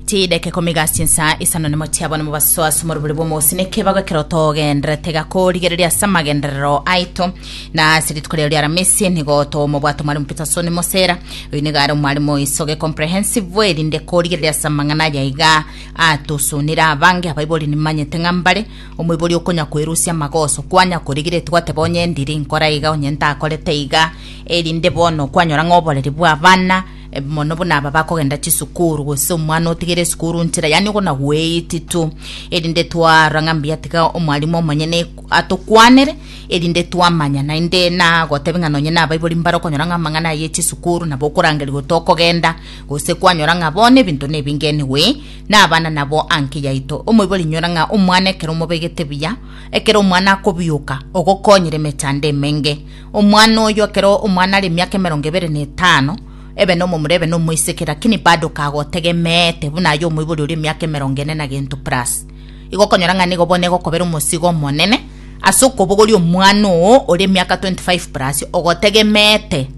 Tideke komigasia ensa isano nemo chiabone mobasoa ase omorobori bw'omosi nekebago ekero togenderete iga korigereria ase amagenderero aito na ase rituko riao ri'aramisi nigo tomobwate omwarimu Peterson Mosera oyo nigo are omwarimu oisoge comprehensive erinde korigereria ase amang'ana aya iga atosunire abange abaibori nimanyete ng'a mbare omoibori okonya koerusia amagoso kwanya korigeretie gwateba onye ndiri nkora iga onye ntakorete iga erinde bono kwanyora ng'a oboreri bw'abana Mono buna aba bakogenda chisukuru, gose omwana otigere esukuru nchera, yaani ogona gweititu, erinde twarora ng'a mbuya tiga omwalimu omonyene atokwanere, erinde twamanya naende nagotebi ng'a nonye nabaibori mbare okonyora ng'a amang'ana aya echisukuru nabo okorangeria gotokogenda, gose kwanyora ng'a bono ebinto nebingenigwe nabana nabo anki yaito. Omoibori inyora ng'a omwana ekero omobegete buya, ekero omwana akobioka, ogokonyire emechando emenge. Omwana oyio ekero omwana are emiaka emerongo ebere na etano, ebe nomomura ebe nomoiseke, lakini bado kagotegemeete buna aye omoibori oria emiaka emerongo ene na gento plus. Igo okonyora ng'a nigo bono egokobera omosigo omonene ase okobogoria omwana oo ore emiaka 25 plus ogotegemeete,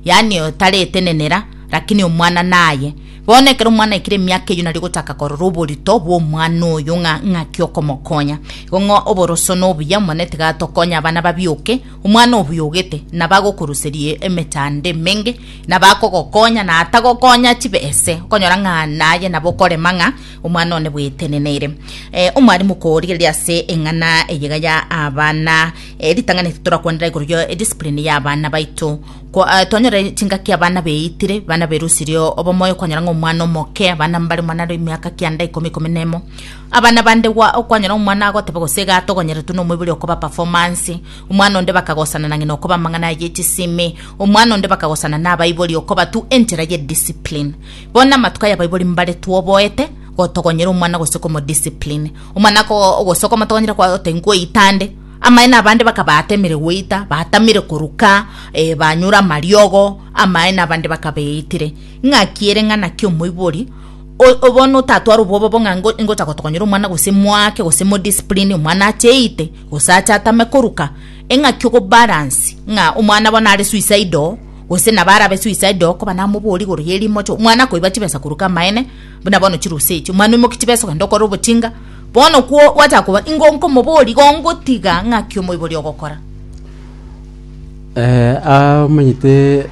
yaani otaretenenera, lakini omwana naye. Bono ekero omwana aikire emiaka eyio nari ogochaka korora oborito bwa omwana oyio ng'a ng'aki okomokonya. Igo ng'a oboroso nobuya, Omonene tiga atokonye abana babioke, Omwana obuyogete nabagokoruseria emechando emenge, nabakogokonya, na atagokonya chibe ese, okonyora ng'a naye nabo okorema ng'a omwana one bwetenenere. Eh, omwarimu korigereria ase eng'ana eyega ya abana, eh, ritang'ani torakwanera igoro yo ediscipline ya abana baito. Kwa- ah, twanyore chingaki abana beitire, abana berusirie obomoyo, okonyora ng'a omwana omoke, abana mbare omwana are emiaka kianda ikomi, ikomi nemo, Abana bande gwa okwanyora omwana agoteba gose iga atogonyeretwe nomoibori okoba performance, omwana onde bakagosana na ng'ina okoba amang'ana aye echisimi, omwana onde bakagosana nabaibori okoba tu enchera ye discipline. Bono amatuko aya abaibori mbare tu oboete gotogonyera omwana gose komo discipline. Omwana ako gose okomotogonyera kwa oteba ngwo ita nde, amaene abande bakaba atemire goita, batamire koruka, eh, banyure amariogo, amaene abande bakaba eitire. Ng'aki ere ng'a naki omoibori, O- bono otatware obwoba bong'a ngo- ngocha gotokonyera omwana gose moake gose modiscipline omwana acheite gose ache atame koruka eng'aki ogobalansi ng'a omwana bono are suicide oo gose nabo arabe suicide oo koba namobori igoro ya erimocho omwana akoiba chibesa koruka amaene buna bono chirusa echi omwana oimoke chibesa ogende okore obochinga bono kwo gwachaka koba ingo nkomobori igo ngotiga ng'aki omoibori ogokora. Omanyete.